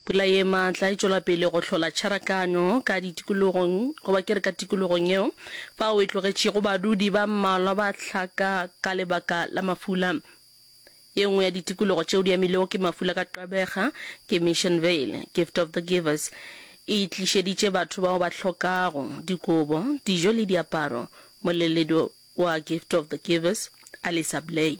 Pula ye maatla e tšwela pele go hlola tšharakano ka ditikologong, goba ke re ka tikologong yeo, fao e tlogetšego badudi ba mmalwa ba hlaka ka lebaka la mafula. Ye nngwe ya ditikologo tšeo di amilwego ke mafula ka tlabega ke Missionvale. Gift of the Givers e tlišeditše batho bao ba hlokago dikobo, dijo le diaparo. Moleledi wa Gift of the Givers, Alisa Blay.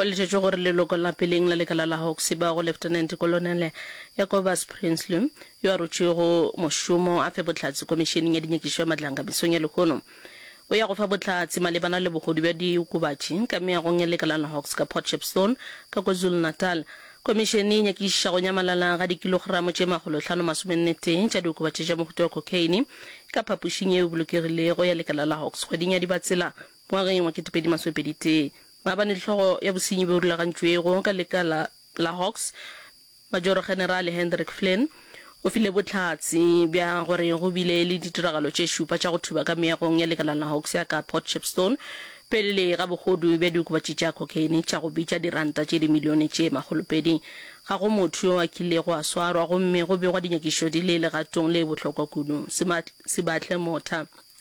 Go letetšwe gore leloko la peleng la lekala la Hawks e ba go Lieutenant Kolonele Jacobus Prinsloo, yo a rotšwego mošomo a fe bohlatse Komišeneng ya Dinyakišo ya Matlanka mesong ya lehono. O ya go fa bohlatse malebana le bogodu bja diokobatši ka meagong ya lekala la Hawks ka Port Shepstone ka KwaZulu-Natal. Komišene e nyakišiša go nyamalala ga dikilogramo tše makgolohlano masomennetee tša diokobatši tša mohuta wa cocaine ka phapošing yeo e bolokegilego ya lekala la Hawks kgweding ya Dibatsela Ngwageng wa ketepedi masomepedi tee, ba ba ni hlogo ya bosenyi bjo rulagantšwego ka leka la la Hawks, Majoro-Generale Hendrik Flynn, o file bohlatse bja gore go bile le ditiragalo tše šupa tša go thuba ka meagong ya lekala la Hawks ya ka Port Shepstone pele ga bogodu bja diokobatši tša cocaine tša go bitša diranta tše dimilione tše makgolopedi. Ga go motho yo a kilego a swarwa gomme go begwa dinyakišo di le legatong le bohlokwa kudu. Sibatle Motha.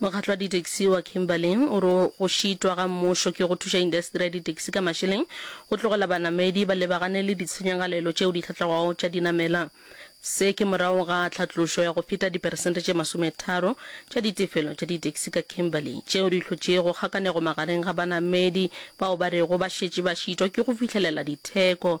Mokgatlo wa ditaxi wa Kimberley o re go šitwa ga mmušo ke go thuša indasteri ya ditaxi ka mašeleng go tlogela banamedi ba lebagane le ditshenyagalelo tšeo di hlatlago tša dinamela. Se ke morago ga tlhatlošo ya go feta diperesente tše masometharo tša ditefelo tša ditaxi ka Kimberley tšeo di hlotšego kgakanego magareng ga banamedi bao ba rego ba šetše ba šitwa ke go fihlelela ditheko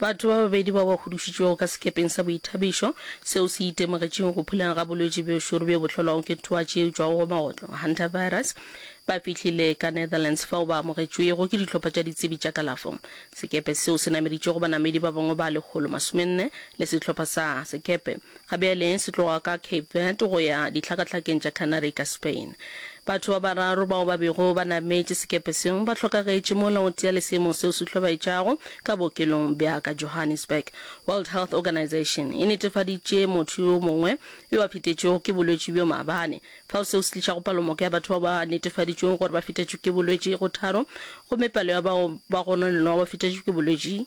Batho ba babedi bao ba hudušitšwego ka sekepeng sa boithabišo seo se itemogetšeng go phuleng ga bolwetši bjo šoro bjo bo hlolwago ke twatši e tšwago go maotlo, hantavirus, ba fihlile ka Netherlands fao ba amogetšwego ke dihlopha tša ditsebi tša kalafo. Sekepe seo se nameditšego banamedi ba bangwe ba lekgolo masomenne le sehlopha sa sekepe Ga bjale se tloga ka Cape Verde go ya Dihlakahlakeng tša Canary ka Spain. Batho ba bararo bao ba bego ba nametše sekepe seo ba hlokagetše mola o tee le seemo seo se hlobaetšago ka bookelong bja ka Johannesburg. World Health Organization e netefaditše motho yo mongwe yo a fetetšwego ke bolwetši bjo maabane fao, seo se tlišago palomoko ya batho bao ba netefaditšwego gore ba fetetšwe ke bolwetši go tharo gomme palo ya bao ba gononelwago ba fetetšwe ke bolwetši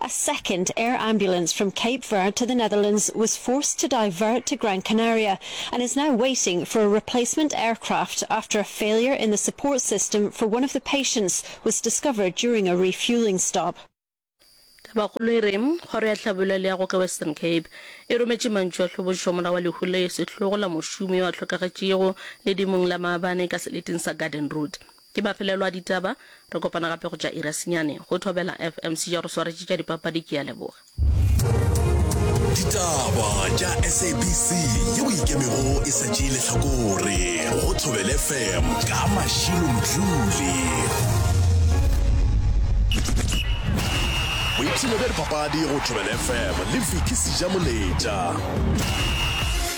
A second air ambulance from Cape Verde to the Netherlands was forced to divert to Gran Canaria and is now waiting for a replacement aircraft after a failure in the support system for one of the patients was discovered during a refueling stop. Tabakgolo e re, Kgoro ya Hlabollo ya Leago ka Western Cape e rometše mantšu a hlobošo morago ga lehu le sehlogo la mošomi yo a hlokagetšego ledimong la maabane ka seleting sa Garden Route. Ke mafelelo a ditaba. Re kopana gape go tša ira senyane. Go Thobela FM se ja re swaretše tša dipapadi ke a leboga. Ditaba tša SABC yeo e ikemego e sa tšee lehlakore go Thobela FM ka Mashilo Mdluli. Boipshino bja dipapadi go Thobela FM le Vicky Sejamoletša.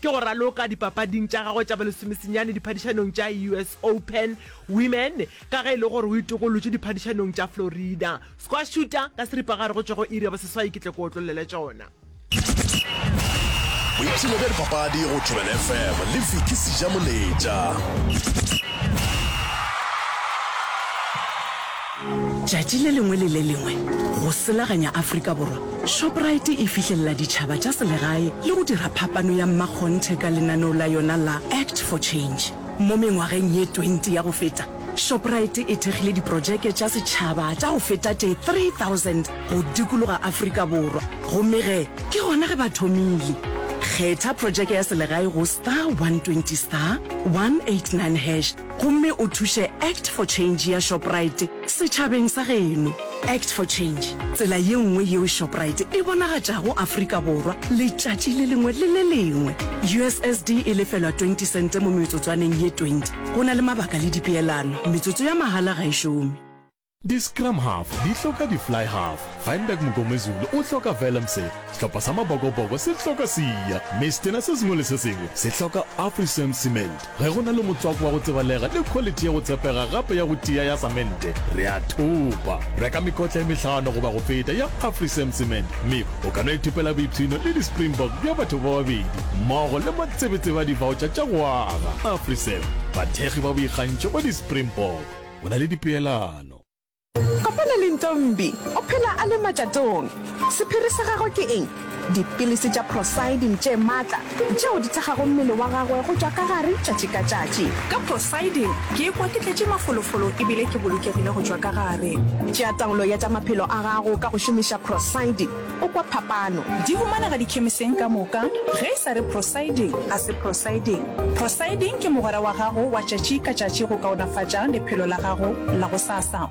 Ke go raloka dipapading tša gagwe tša balesomesenyane diphadišanong tša US Open Women ka ge e le gore o itokolotše diphadišanong tša Florida. Squash shooter ka seripagare go tšwa go iri ya boseswai ke tle ke otlollele tšona. Boipshino bja dipapadi go Thobela FM le Vicky Sejamoletša. Tšatši le lengwe le le lengwe go selaganya Afrika Borwa Shoprite e fihlelela ditšhaba tša selegae le go dira phapano ya mmakgonthe ka lenaneo la yona la Act for Change. Mo mengwageng ye 20 ya go feta, Shoprite e thekgile diprojeke tša setšhaba tša go feta tše 3000 go dikologa Afrika Borwa, gomme ge ke gona ge ba thomile. Kgetha projeke ya selegae go star 120 star 189 hash. gomme o thuše Act for Change ya Shoprite setšhabeng sa geno. Act for Change, tsela ye nngwe yeo Shoprite e bonagatšago Afrika Borwa letšatši le lengwe le le lengwe. USSD e lefelwa 20 sente mo metsotswaneng ye 20. Go na le mabaka le dipeelano, metsotso ya mahala ga e šome. Di-scrum half di hloka di-fly half. Feinberg Mngomezulu o hloka Vellemse. Sehlopha sa Mabokoboko se hloka Siya Mistena. Se sengwe le se sengwe se hloka Afrisame Cement. Ge go na le motswako wa go tsebalega le khwalithi ya go tshepega gape ya go tia ya samente, re a thopa. Reka mekotla e mehlano goba go feta ya Afrisame Cement, mme o ka no ithopela boipshino le di-Springbok bja batho ba babedi mmogo le matsebetsebe a divaotšha tša go aga. Afrisame, bathekgi ba boikgantšho ba di-Springbok. o na le dipeelano. Kopana le Ntombi, o phela a le matšatong. Sephiri sa gagwe ke eng? Dipilisi tša Procydim tše matla, tšeo di thekgago mmele wa gagwe go tšwa ka gare tšatši ka tšatši. Ka Procydim ke ikwa ke tletše mafolofolo e bile ke bolokegile go tšwa ka gare. Tšea taolo ya tša maphelo a gago ka go šomiša Procydim. O kwa phapano? Di humanega dikhemiseng ka moka, ge e sa re prosiding, a se prosiding. Prosiding ke mogwera wa gago wa tšatši ka tšatši go kaonafatša lephelo la gago la gosasa.